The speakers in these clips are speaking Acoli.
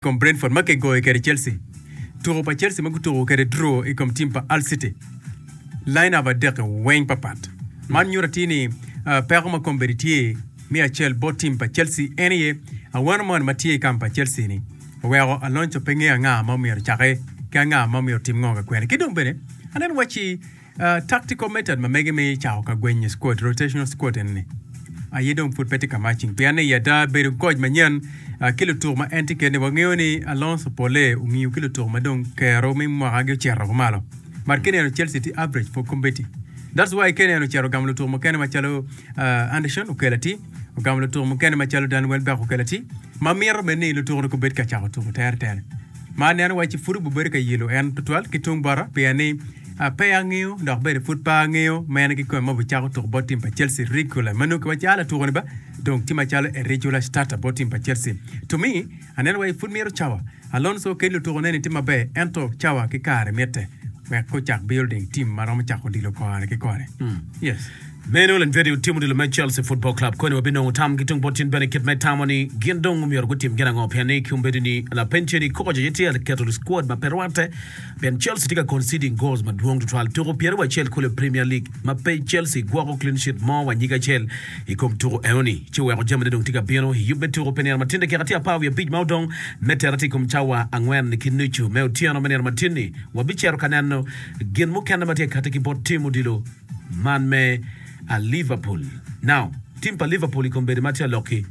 kom Brentford ma kigoyo kwede Chelsea, tuko pa Chelsea ma gutuko kwede draw i kom tim pa Hull City, line up adek-ki weng papat. Man nyuto atir ni peko ma kombeddi tye me acel bot tim pa Chelsea en aye awano moni ma tye i kamp pa Chelsea-ni oweko Alonso pe ngeyo anga ma myero ecake ki anga ma myero otim ngo ka kwene. Ki dong bene aneno wacci Uh, tactical method ma mege me cako ka gwenyo squad, rotational squad en ni. Aye dong pud pe tye ka matching. Pien ni yada bedo coach manyen uh, ki lutuk ma en tye kene wangeyo ni Alonso pole ongiyo ki lutuk ma dong kero me mwaka gi ocito ko malo. Mar kene eno Chelsea tye average for competing. That's why kene eno cero gamo lutuk mukene macalo uh, Anderson okelo ati, ogamo lutuk mukene macalo Dan Welbeck okelo ati, ma mito bed ni lutuk ni kubed ka cako tuko tere tere. Ma aneno wacci pud obibedo ka yelo en tutwal ki tung bota pien ni pe angeyo dok bene pud pe angeyo ma en kikome ma obicako tuko bot tim pa Chelsea regular ma nongo kiwacci a latukoni ba dong tye macalo a regular starter bot tim pa Chelsea. To me, aneno wacci pud mito cawa. Alonso kit lutukoneni tye maber ento cawa ki kare mitte wek gucak building tim ma romo cako odilo kore ki kore. Yes. Meno Ulen Jwede otimo odilo me Chelsea Football Club koni wabinongo tam ki tung bot cen bene kit ma itamo ni gin dong omyero gutim gin ango pien ni ki ombedo ni lapeny ceni koco aye tye ka keto squad ma pe rwatte pien Chelsea tye ka conceding goals madwong tutwal tuku pyere wa acel kulu i Premier League ma pe Chelsea gwoko clean sheet mo wa nyige acel i kom tuku enoni ci oweko jamine dong tye ka bino i yub me tuku pi nino matin dakika tye apar wiye abic ma odong me tere tye i kom cawa angwen ki nucu me otyeno me nino matin-ni wabicito ka neno gin mukene ma tye ka katti ki bot tim odilo Man me a Liverpool now Tim pa Liverpool i kombeddi ma tye alok ki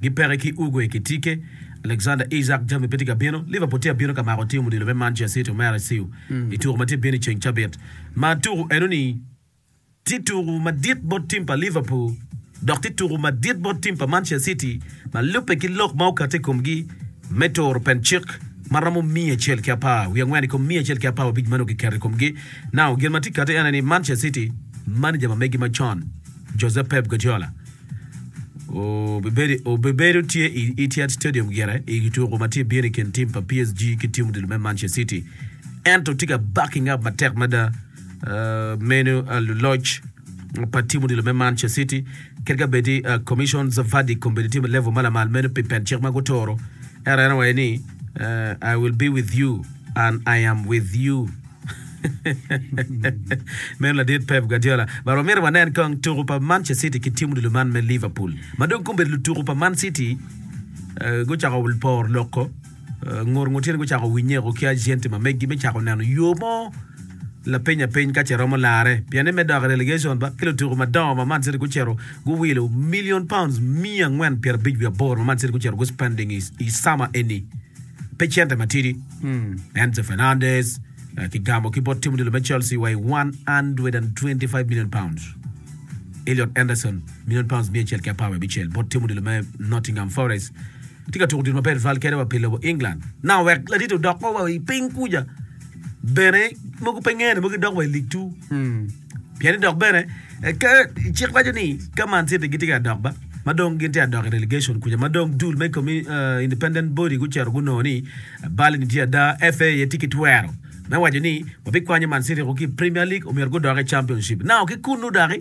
gi peke ki Ugue ki Tike, Alexander Isak, jami pe tye ka bino. Liverpool tye abino ka mako tim odilo me Manchester City omera ciu i tuku ma tye bino i ceng cabit ma tuku eno ni tye tuku madit bot tim pa Liverpool. dok tye tuku madit bot tim pa Manchester City ma lubbe ki lok ma okato i komgi me turo pencik ma romo miya acel ki apar wiye angwen i kom miya acel ki apar abic ma nongo kiketo i komgi. Now, gin ma tye kati ene ni Manchester City, maneja ma megi macon, Jose Pep Guardiola, obibedo obibedo tye i Etihad Stadium gire i tuku ma tye bino i kin tim pa PSG ki tim odilo me Manchester City, ento tye ka baki ngap matek mada meno luloc pa tim odilo me Manchester City kit ka bedi uh, Commission Zavadi kombedi tim level ma lamal meno pi pet cik ma gutoro ero en awaye ni uh, I will be with you and I am with you meno ladit Pep Guardiola but wamito wanen kong tuku pa Manchester City ki tim odilo man me Liverpool ma dong kombedi lutuku pa Man City uh, gucako poro loko Ngur ngur tyen gucako winye eko ki ajenti ma meggi me cako neno yo mo lapeny apeny ka ce romo lare pien ni me dok i relegation ba ki lutuku madongo ma Man City gucito guwilo million pounds miya angwen pyera abic wi aboro ma Man City gucito gu spending i, i summer eni pe cente matidi hmm. Enzo Fernandez uh, kigamo ki bot tim odilo me Chelsea wa i 125 million pounds Elliot Anderson million pounds miya acel ki apar wi abicel bot tim odilo me Nottingham Forest Atye ka tuko odilo maber tutwal kene wa pi lobo England. Nanga wek laditi odok wa wa i piny kuja bene mogo pe ngene mogo gidok wa i lig two. Hmm. Pien ni dok bene eh, ka cik waco ni ka Man City gitye ka dok ba ma dong gin tye ka dok i relegation kuja ma dong dul me komi, eh, independent body gucito gunongo ni bal-ni tye ada, FA aye tye ki twero me waco ni wabikwanyo Man City woko ki i Premier League omyero gudok i Championship. Nanga ki kunnu doki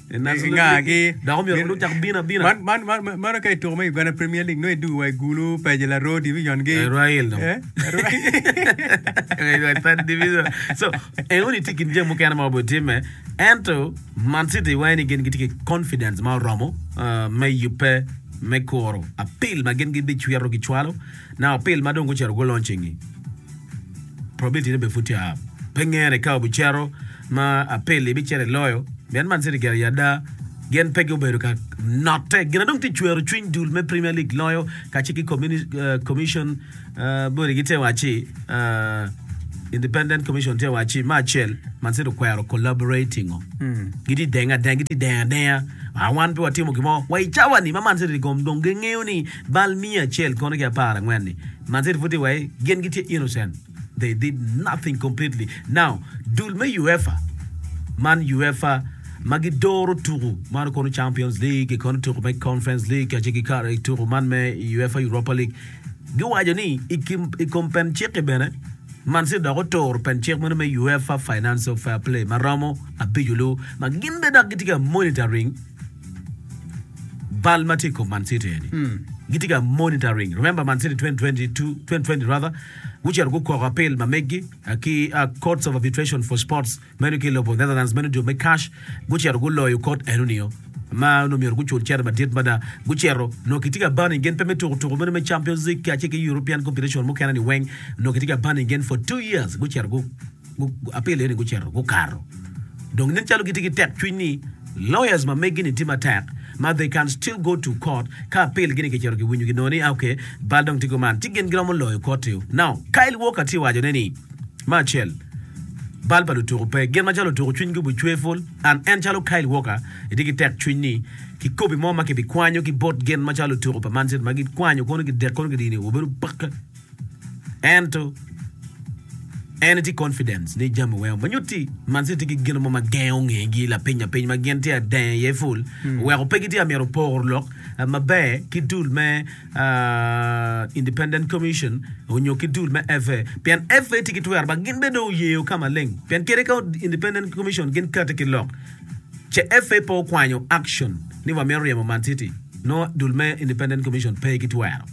ingagi. Meno ka i tuko me Uganda Premier League nongo idugo wa i Gulu, Paje, Larodi, Vision ki Royal dong. So en eni tye i kin jami mukene ma obedo timme ento Man City wange ni gin gitye ki confidence ma oromo me yubbe me kuro apil ma gin gibicwito gicwalo naka apil ma dong gucito guloncingi. Probability ne bene pud tye pe ngene ka obicito ma apel ibicito iloyo mit Man City gire ada gin pe gubedo ka note gina dong ti cwero cwiny dul me Premier League loyo kace ki commission body gi te waci Independent Commission te waci ma acel Man City okwero collaborating o giti denga denga giti denga denga a wan pe watimo gimo wa i cawa ni ma Man City gom dong gengeyo ni bal miya acel kono ki apar angwen ni Man City pud ti wai gin gitye innocent They did nothing completely. Now, dul me UEFA man UEFA ma gidoro tuku man kono Champions League ki kono tuku me Conference League kacel ki kare ki tuku man me UEFA Europa League giwaco ni i kim i kom pen cik-ki bene Man City dok otoro pen cik meno me UEFA Financial Fair Play ma romo abico lu ma gin bene dok gitye ka monitoring bal ma tye i kom Man City eni gitye ka monitoring remember Man City 2022 2020 rather Gucito gukoko apil ma megi ki Courts of Arbitration for Sports meno ki i lobo Netherlands meno dwe me Cash. Gucito guloyo kot eno nio ma onongo myero gucul cene madit mada. Gucito nongo kitye ka banning gen pe me tuko tuko meno me Champions League kacel ki European competition mukene ni weng nongo kitye ka banning gen for two years. Gucito gu. Apele ni gucito gukato dong nen calo gitye ki tek cwiny ni lawyers ma megi ni tye matek ma they can still go to court ka apel gi ni kicito ki winyo gi nongo ni ah okay bal dong tye go man ci gin giromo loyo koti o now Kyle Walker tye waco ne ni me acel bal pa lutuku pe gin macalo lutuku cwiny gi bu cweful and en calo Kyle Walker itye ki tek cwiny ni ki kopi mo ma ki bi kwanyo ki bot gin macalo lutuku pa man city ma gi kwanyo kono gi dek kono gi dini obedo pake Ento, en etye confidence ni jami weng ma nyuto ni Man City tye ki gino mo ma gengo ngegi lapiny lapiny ma gin tye adenge iye full oweko pe gitye ka myero poro lok ah, maber ki dul me ah, Independent Commission onyo ki dul me FA pien FA tye ki twero ba gin bene dong oyeyo ka maleng pien kadi ka Independent Commission gin kati ki lok CFA pe okwanyo action ni wa mito ryemo Man City nongo dul me Independent Commission pe ki twero.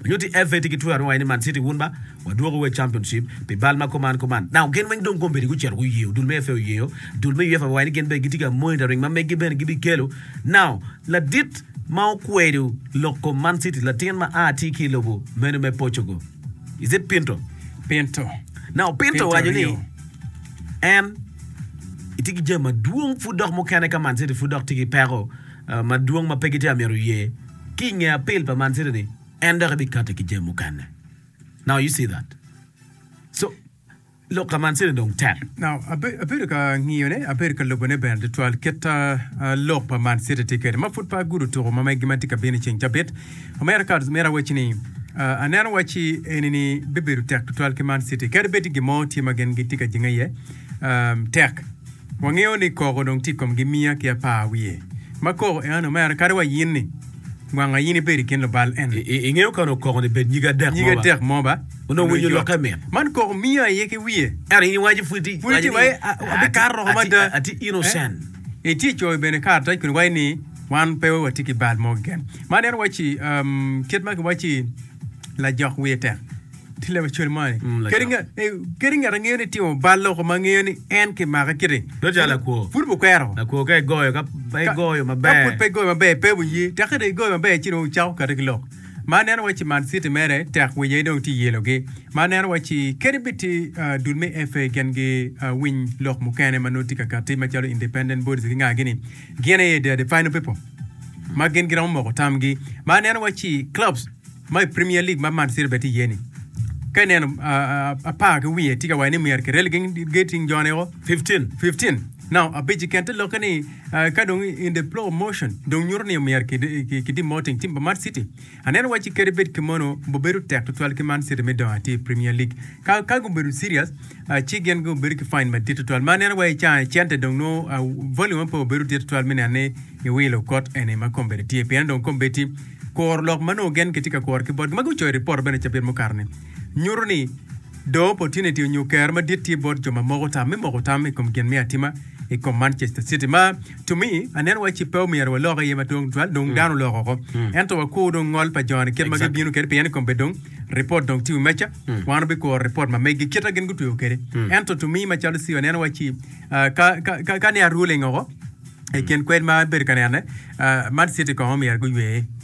Nyo CFA tye ki twero me waye ni Man City wun ba wa dwoko wa i Championship pi bal ma kuman kuman. Now gin weng dong kombedi gucito guyeyo dul me FA oyeyo dul me UEFA waye ni gin bene gitye ka monitoring ma megi bene gibi kelo. Now ladit ma okwedo lok kom Man City latin ma a tye ki i lobo meno me Portugal. Is it Pinto? Pinto. Now Pinto Pinto owaco ni Rio. en itye ki jami madwong pud dok mukene ka Man City pud dok tye ki peko ah, madwong ma pe gitye ka myero ye ki inge apil pa Man City ni en dok ebikate ki jami mukene. Now you see that. So Lok ka man cene dong tek. Now, abedo ka ngiyone, abedo ka lubone bene tutwal kit a lok pa man city tye kede ma pud pe agudo tuko ma megi ma tye ka bino ceng cabit. Omera Cards mera wacci ni aneno wacci eni ni bibedo tek tutwal ki man city kadi bed ni gin mo tye ma gin gitye ka jinge iye tek. Wangeyo ni koko dong tye i kom gimiya ki apar wiye ma koko en omera kadi wa yin ni gwang ayin ibed i kin lubal en. Ingeyo kano koko ni bed nyige adek mo ba? Nyige adek mo ba? Onongo winyo lokke mit. Man koko miya aye ki wiye. Ento in iwaco pwod ti pwod ti wai abikato roko mada. Ati innocent. Iti coyo bene karatac kun iwaci ni wan pe wa ti ki bal mo keken. Man en waci kit ma ki waci. Lajok wiye tek. Tye lawecwal mo ni. Mm, lajok. Kadi nga- eh, kadi ngat angeyo ni timo bal loko ma ngeyo ni en kimake kiti. Dong calo lakwo. Pud bukwero. Lakwo ka igoyo, ka pe Ka- igoyo Ka pud maber. pe igoyo maber, pe wuye. Tek ka dong igoyo maber ci dong wucako kati ki lok. Ma aneno waci Man City mere tek winya aye dong tye yelogi. Ma aneno waci kadi bed tye ah, dul me FA gen gi ah, winy lok mukene ma nongo tye ka kati macalo independent bodies ki nga gini. Gin aye the final people ma gin giromo moko tamgi. Ma aneno wa ci clubs ma i Premier League ma Man City bene tye iye ni. Ka ineno ah, ah, apar ki wiye tye ka waco ni myero kirel gin getting jone o 15. 15. Now abic keken te lokke ni ah, ka dong in the flow of motion dong nyuto ni myero ki ki- ki demoting team pa Man City. Aneno wacci kadi bed kemonu, bibedo tek tutwal ki Man City me dongo atir i Premier League. Ka, ka gubedo serious, ah, ci gin gubedo ki fine madit tutwal. Ma aneno wa i caa-ni, cente dong nongo, ah, volume aye pe obedo dit tutwal me neno ni iwilo kot eni ma kombeddi tye. Pien dong kombeddi kuro lok ma nongo gen kitye ka kuro ki botgi. Ma gucoyo i ripot bene cabit mukato-ni, nyuto ni dong opportunity onyo kero madit tye bot jo ma moko tam me moko tam i kom gin me atima i kom Manchester City. Ma To me, aneno waci pe omyero walok iye madwong tutwal, dong dano olok oko. Ento wakwo dong ngol pa joni kit ma gibino kwede, pien i kom bed dong ripot dong tye i wi meja, wan wabikuro ripot ma megi kit ma gin gutweyo kwede. Ento to me macalo Ciwa, aneno waci ah, ka, ka, ka, ka ne aruling oko i kin kwed ma abedo ka nene, ah, man citi kong omyero guyweye.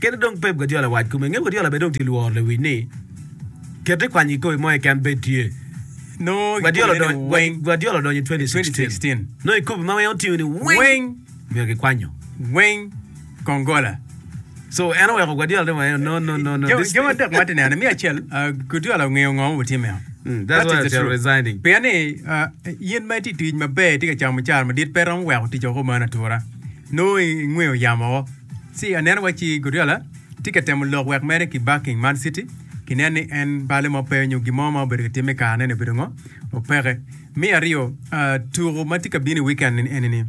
Kit dong Pep Guardiola wac kome, nge Guardiola bene dong tye lworo lewic ni kete kwany i kikopo mo keken bed tye. Nongo Guardiola odonyo i 2016 nongo i kopo ma en otingo ni weng myero kikwanyo. Weng kong gola. So en oweko Guardiola ni weng no no no no. Gin adek ma ti neno me acel Guardiola ongeyo ngo ma butime o. That's why they're resigning. Pien ni in ma iti tic maber iti ka camo mucara madit pe romo weko tic oko man atura. Nongo i ngwe oyamo woko ci aneno waci Guardiola tye ka temo lok wek mere ki backing Man City kinen ni en bale mo pe nyo gin mo ma obedo ka timme i kare neni obedo ngo, opeke. Me aryo, tuku ma tye ka bino i weekend enini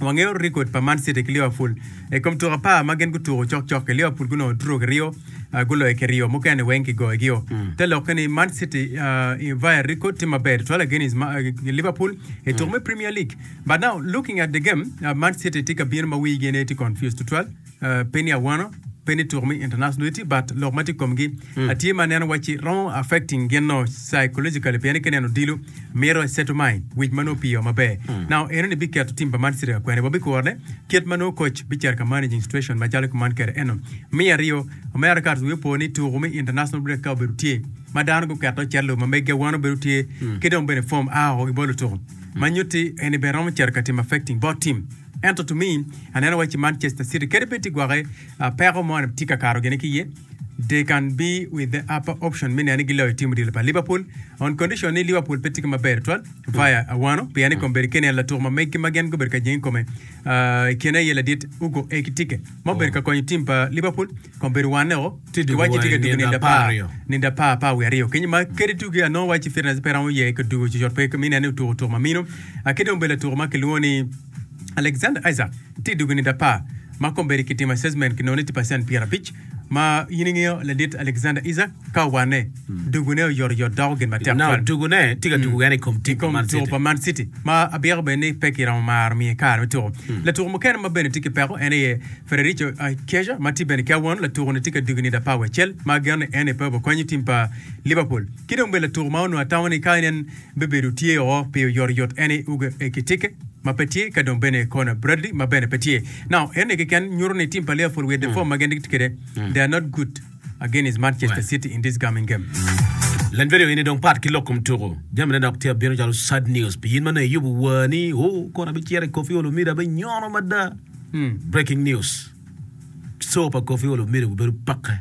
wangeyo record pa Man City ki Liverpool i kom tuku apar ma gin gutuku cok cok ki Liverpool gunongo two ki ryo guloyo kiryo mukene weng ki goyo gio. Te lokke ni Man City via record tye maber tutwal against Liverpool i tuku me Premier League. But now looking at the game, uh, Man City tye ka bino ma wigi ne tye confused tutwal, uh, pe ni awano, pe ni tuko me international duty, but lok ma tye komgi mm. atye ma neno wacci romo affecting gin no psychologically pien ki neno dilo mito e settle mind wic ma no piyo maber. Mm. Now eno ni biketo tim pa Man City ka kwene wa bikurone kit ma no coach bicer ka managing situation ma calo ki man kere eno. Mi aryo, America wi po ni tuko me international break ka obedo tye ma dano guketo celo ma megi awano bedo tye mm. ki dong bene form a oko gibolo tuko. Ma nyutti eni bene romo cito ka tim affecting both team. Ento to me, aneno waci Manchester City kadi bed tye gwoke, peko mo ni tye ka kato gine ki ye. They can be with the upper option me neno ni giloyo team odilo pa Liverpool on condition ni Liverpool pe tye ki maber twal via awano pien i kombeddi kene en latuk ma meggi ma gin gubedo ka jenge i kome. I kine aye ladit Hugo Ekitike ma obedo ka konyo tim pa Liverpool kong bedo wanne o ki wacci tye ka tugo ninde apar ninde apar apar wiye aryo kenyo ma kadi tugi a nongo wacci fitness pe romo ye ka tugo cocot pe mi nene otuko tuk ma mino a ki dong bedo latuko ma kilwongo ni Alexander Isaac tye tugo ninde apar ma kong bedo ki timo assessment ki nongo ni tye percent pyerabic Ma in ingeyo ladit Alexander Isak ka owanne, dugune oyotoyot doko gin matek twal. Now, dugune tye ka tuko kene i kom tim pa Man City. pa Man City ma abyeko bene ni pe kiromo maro miye kare me tuko. Latuko mukene ma bene tye ki peko en aye Federico Chiesa ma tye bene ki awon. Latuko-ni tye ka dugo i nida apar wiye acel ma ageno ni en aye pe obikonyo tim pa Liverpool. Ki dong bene latuko ma onongo atamo ni ka en bibedo tye o pi oyotoyot eni Uga Ekitike ma pe tye, ka dong bene Connor Bradley ma bene pe tye. Now, eni keken nyuto ni tim pa Liverpool with the form ma gin gitye kwede, they are not good against Manchester City in this coming game. Lany vidio eni dong pat ki lok kom tuku. Jamine dok tye abino calo sad news pi in ma nongo iyubo war ni, Oh, kono abicito i Koffi Olomide abenyono mada. Breaking news, Show pa Koffi Olomide gubedo pakke.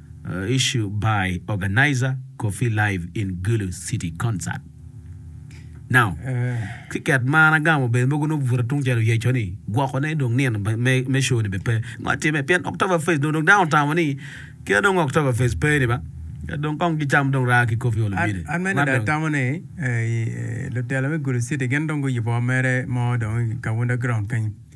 Issued by Organizer Coffee Live in Gulu City Concert Now Ki ket mar agamo bene mogo nongo bute tungcel oyeco ni gwoko ne dong nino me show ni bene pe ngo atime pien October Fest dong dano otamo ni kite dong October Fest pe ni ba dong kong ki cam dong raa ki coffee olo bide. An mene dong atamo ni lutelo me Gulu City gin dong guyubo mere mo dong i Kaunda Ground kenyo.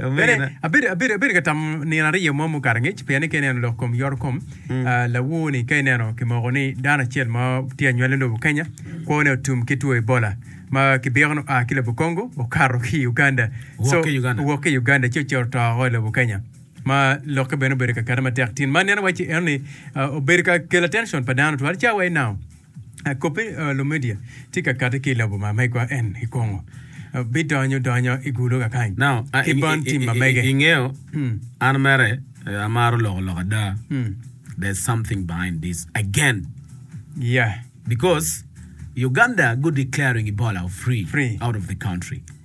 Abedo ka tamo nino aryo mo mukato angec pien ni ka ineno lok kom yoro kom lawor ni ka ineno kimoko ni dano acel ma tye anywale lobo Kenya kwo ne otum ki two Ebola ma kibiko ni oa ki lobo Congo okato ki Uganda owok ki Uganda ci ocito oto woko i lobo Kenya ma lokke bene obedo kakare matek tin ma aneno waci eno ni obedo ka kelo attention pa dano twal ca wa i now. Kobbe Lumedia tye ka kati ki i lobo ma megwa en i kongo bidonyo donyo i gulo kakany ki bon tim ma mege. Ingeyo an mere amaro loko lok ada there's something behind this again Yeah. because Uganda go declaring Ebola free Free. out of the country.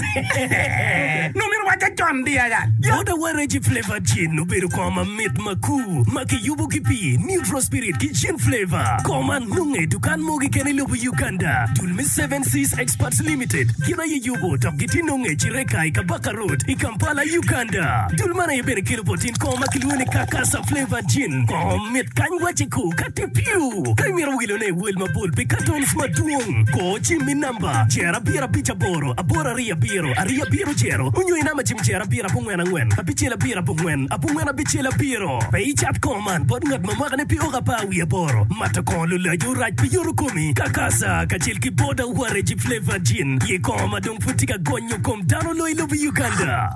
Nongo myero owacce con di aya. Bota wa Reggie Flavor Gin obedo kor mamit makur ma kiyubo ki pi Neutral Spirit ki Gin Flavor. Kor man nonge i dukan mogo keken i lobo Uganda. Dul me Seven Seas Exports Limited gin aye yubo dok gitye nonge i Kireka i Kabaka Road i Kampala, Uganda. Dul man aye bene kelo bot in kor ma kilwongo ni Kakasa Flavor Gin. Kor mit kany wacce ko ka tye piu. Ka imito wilone iwel mabol pi katons madwong, kor ci me namba. Number, Jer abiro abic aboro, aboro ariyo abiro, ariyo abiro jero, onyo i namba jim jer abiro abongwen angwen, abicel abiro abongwen, abongwen abicel abiro. Pe icat kongo man bot ngat ma mwakane pe oko apar wiye aboro. Mato kongo lulaco rac pi yoto komi, kakasa, kacel ki boda waregi flavored gin, ye kongo ma dong pud tye ka gonyo kom dano loyo lobo Uganda.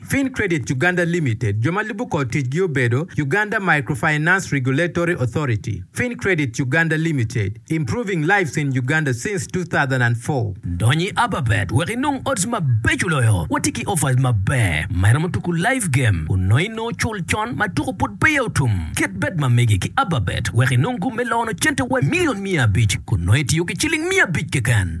Fin Credit Uganda Limited, jo ma lubo kor ticgi obedo, Uganda Microfinance Regulatory Authority, Fin Credit Uganda Limited, Improving Lives in Uganda since 2004. Dony i Ababet wek inong odds mabeco loyo. Watye ki offers maber ma iromo tuku live game onongo inongo cul con ma tuku pud peya otum. Ket bet ma mege ki Ababet wek inong gum me lono cente wa milion miya abic kun nongo itiyo ki ciling miya abic keken.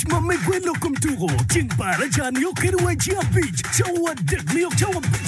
Tic ma me gwelo kom tuko ceng bar aca nio kede wa ci abic, cawa adek nio cawa abic.